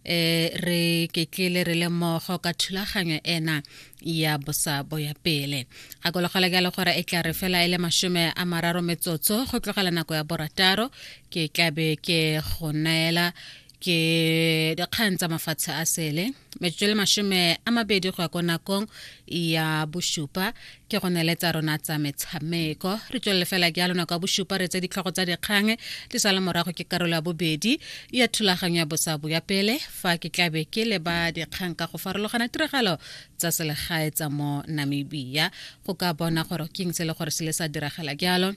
e re ketlile re le mmogo ka thulaganyo ena ya bosabo ya pele gakologelwa ke le gore e tla re fela e le masome a mararo metsotso go tlogela nako ya borataro ke tlabe ke go neela ke dikgang tsa mafatshe a sele metsotso le masome a mabedi go ya ko nakong ya bosupa ke go nele tsa rona tsa metshameko re tswelele fela ke ya lona kwa bosupa re tse ditlhogo tsa dikgang di sa le morago ke karolo ya bobedi ya thulaganyo ya bosabo ya pele fa ke tlabe ke le ba dikgang ka go farologana tiragalo tsa selegae tsa mo namibia go ka bona gore ke eng se le gore se le sa diragala jalo um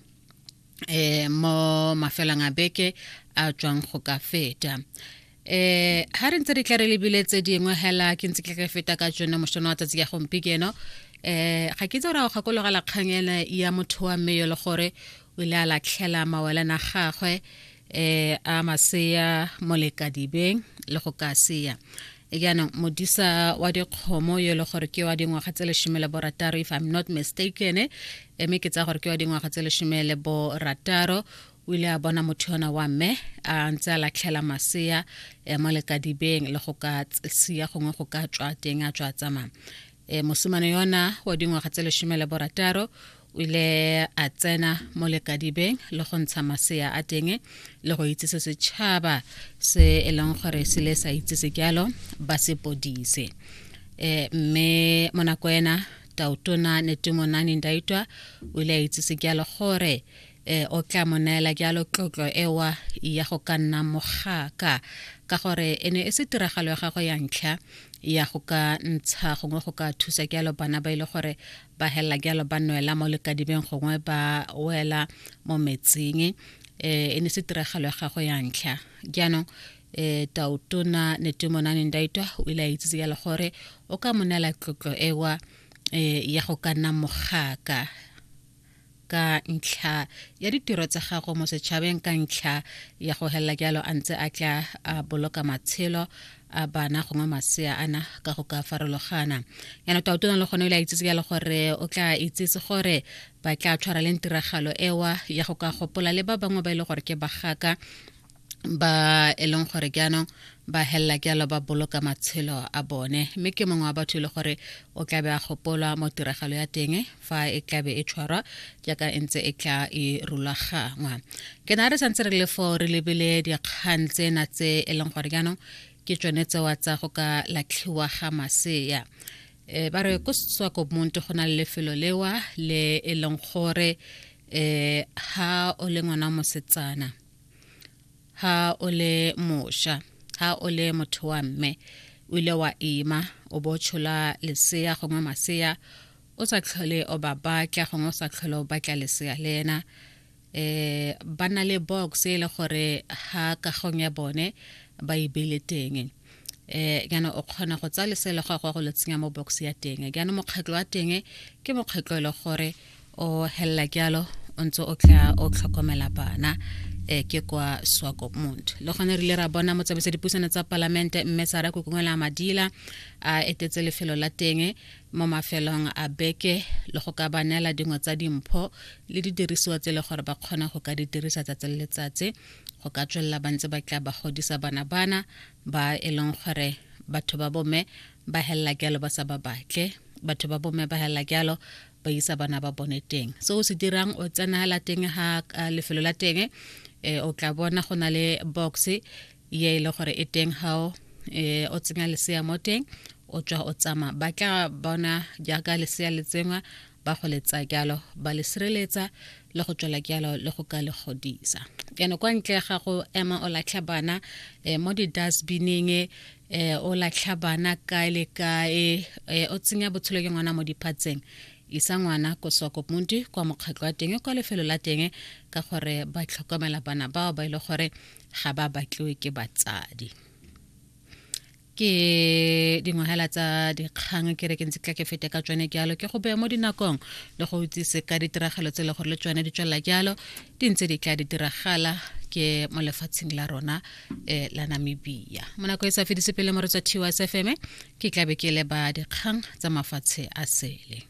eh, mo mafelong a beke a tswang go ka feta eh ha re ntse re tla re lebile tse dingwe hela ke ntse ke re feta ka tsone mosono wa tsatsi ya gompikeno eh ga ke tse gore a gakologela kgang ena ya motho wa mme yo le gore o ile a latlhela mawelana gagwe eh a masea molekadibeng le go ka sea jaanong modisa wa dikgomo yo e le gore ke wa dingwaga tse lesome le borataro if i'm not mistaken mme ke tsaya gore ke wa dingwaga tse lesome le borataro o ile a bona motho yona wa mme a ntse a latlhela masea um mo lekadibeng le go ka sia gongwe go ka tswa teng a tswa tsamaya um mosimane yona wa dingwaga tse lesome le borataro o ile a tsena mo lekadibeng le go ntsha masea a teng le go itsese setšhaba se e leng gore se le sa itsese jalo ba se podise um mme mo nako ena tautona netemonane ndaitwa o ile a itsese jalo gore um e o tla mo neela jalo tlotlo ewa ya go ka nna mogaka ka gore e ne e se tiragalo ya gago ya ntlha ya go ka ntsha gongwe go ka thusa jalo bana ba ile e gore ba helela jalo ba nwela mo lekadibeng gongwe ba wela mo metsing eh, e ne se tiragalo ya gago ya ntlha jaanong um tautona netumonane ndaitwa o ile a itsitse jalo gore o ka mo neela tlotlo ewa um ya go ka nna mogaka ka ntlha ya ditiro tsa gago mo setšhabeng ka ntlha ya go helela jalo a ntse a tla a boloka matshelo a bana gongwe masea ana ka go ka farologana yana tautona le gone o ile a itsetse jalo gore o tla itsetse gore ba tla tshwareleng tiragalo ewa ya go ka gopola le ba bangwe ba e le gore ke bagaka ba e leng gore jaanong ba helela jalo ba boloka matshelo a bone mme ke mongwe wa batho e le gore o tlabe a gopolwa mo tiragalo ya teng fa e tlabe e tshwarwa jaaka e ntse e tla e rulagangwa ke na re santse re le foo re lebile dikgang tsena tse e leng gore jaanong ke tsone tsewa tsa go ka latlhiwa ga masea um ba re ko setswako monto go na le lefelo lewa le e leng gore um ha o le ngwana mosetsana ha o le mosha ha o le motho wa mme o ile wa ima o bo tshola lesea gongwe masea o sa tlhole o ba batla gongwe o sa tlhole o batla lesea le ena eh ba na le box e le gore ha kagong ya bone ba e beile teng eh kana o kgona go tsa lesele go go le tsenya mo box ya teng kana mokgatlo wa teng ke mokgatlo e le gore o hella kyalo o ntse o tla o tlhokomela bana eh ke kwa swakopmund le gone re ile ra bona motsamaisa dipusano tsa palamente mme sara kokongwela madila a etetse lefelo la teng mo mafelong a beke le go ka banela dingwe tsa dimpho le didirisiwa tse le gore ba kgona go ka di dirisa tsatsi le letsatsi go ka tswelela ba ntse ba tla ba godisa bana bana ba e leng gore batho ba bomme ba helela jalo ba sa ba batle batho ba bomme ba helela jalo ba isa bana ba bone teng se o se dirang o tsena la teng ha lefelo la teng e o tla bona go na le box ye e le gore e teng hao e o tsenya lesea mo teng o tswa o tsama ba tla bona jaaka lesea le tsengwa ba go le tsaya jalo ba le sireletsa le go tswela jalo le go ka le godisa ene kwa ntle ga go ema o latlha bana um mo di-dustbining um o latlha bana kae le kae um o tsenya botshelo ke ngwana mo diphatseng isa ngwana ko sokopunti kwa mokgatlho wa teng kwa lefelo la teng ka gore ba tlhokomela bana bao ba e le gore ga ba batliwe ke batsadi ke dingwagela tsa dikgang ke re ke ntse tla ke fete ka tsone jalo ke go beye mo dinakong le go itsise ka ditiragalo tse e le gore le tsone di tswelela jalo di ntse di tla di diragala ke mo lefatsheng la rona eh, la namibia mo nako e sa fedise pele mo re tswa tiwa sfm ke tlabe ke leba dikgang tsa mafatshe a sele